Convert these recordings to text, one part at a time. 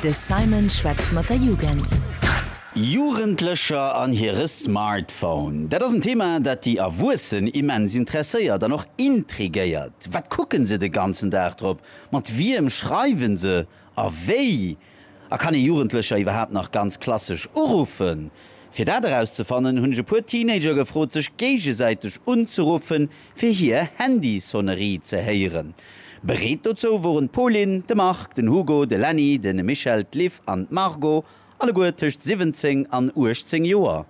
De Simon schwätzt mat der Jugend. Jugendlecher an hire Smartphone. Dat ass en Thema, dat déi Erwuessen immens interesséiert an och intrigéiert. Wat kucken se de ganzen Dag drop, mat wiem schreiwen se a wéi A kann ee Jugendlecher iwwerhaapt nach ganz klassesch uruffen? Fir dat erauszefannen, hunn ech e puer Teenager gefrot, sech géigesäiteg unzeruffen, fir hier Handysonnerie ze héieren. Bereet dozou woren d'Pauline, de Marc, den Hugo, de Lenny, de Michel, d'Liv an d'Margot, alleguer tëscht 17 an 18 Joer.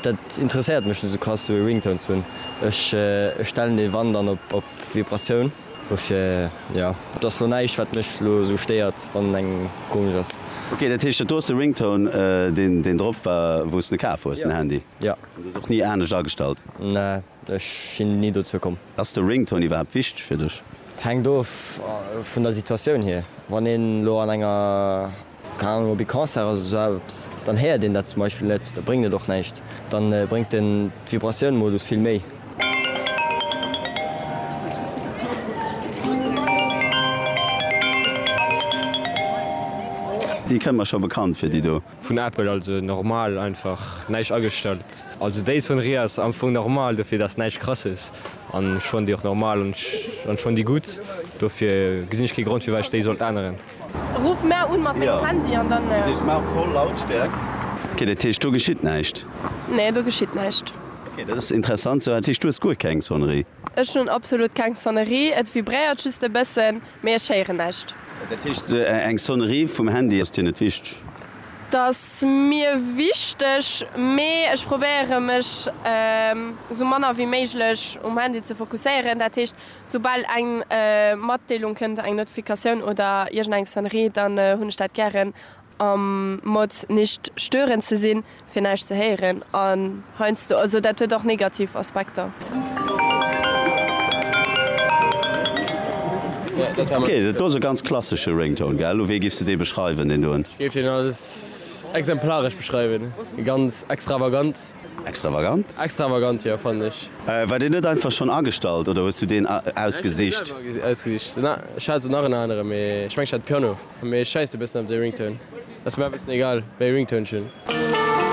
Dat interesséiert mech net sou krass sou ee Ringtone ze hunn. Ech stellen dee wann dann op Vibratioun. Dofir jo, et ass lo näischt wat mech lo sou stéiert wann en engem komesch ass. Ok, dat heescht dat do ass de Ringtone deen drop war wou's de kaf hues den Handy? Jo. An du hues och ni anescht agestallt? Nee, ech sinn ni dozou komm. Ass de Ringtone iwwerhaapt wichteg fir dech? Hänkt of vun der Situatioun hier. Wann een lo an enger. Keng Ahnung, ob ee Concert ass oder sou eppes, dann héiert een dat zum Beispill net, da bréngt et och näischt. Da bréngt den d'Vibratioun-Modus vill méi. Déi kënnt mer scho bekannt vir, déi do. Vun Apple, also normal, einfach näischt agestallt. Also déi Sonnerie ass am Fong normal, dofir dass näischt krasses an ech fannen déi och normal an ech fannen déi gutt, dofir gesinn ech kee Grond firwat ech déi sollt änneren. Ruff mär un mat mengem Handy an dann. Déi Smart voll Lautstärkt. Ok, dat heescht do geschitt näischt? Nee, do geschitt näischt. Ok, dat ass interessant. Sou, dat heescht du hues guer keng Sonnerie? Ech hunn absolut keng Sonnerie. Et vibréiert just e bëssen, mee ech héieren näischt. Dat heescht eng Sonnerie vum Handy ass dir net wichteg? Dat ass mir wichteg, mee ech probéiere mech sou manner wéi méiglech um Handy ze fokusséieren. Dat heescht. Soubal eng Matdeelung kënnt, eng Notifikatioun oder iergend eng Sonnerie, dann hunn ech dat gären am Mode nicht stören ze sinn, fir näischt ze héieren an heiansdo, also dat huet och negativ Aspekter. Ok, dat do ass e ganz klassesche Ringtone, gell? Wéi géifs de dee beschreiwen, deen doen? Ech géif deen als exemplaresch beschreiwen, ganz extravagant. Extravagant? Extravagant, jo, fannen ech. War deen net einfach schonn agestallt oder hues du deen ausgesicht? Ech hunn dee selwer ausgesicht. Na, ech hat esou nach en aneren, mee ech mengen ech hat Piano. Mee ech schäissen e bëssen op dee Ringtone. Ass mer awer e bëssen egal wéi ee Ringtone ech hunn.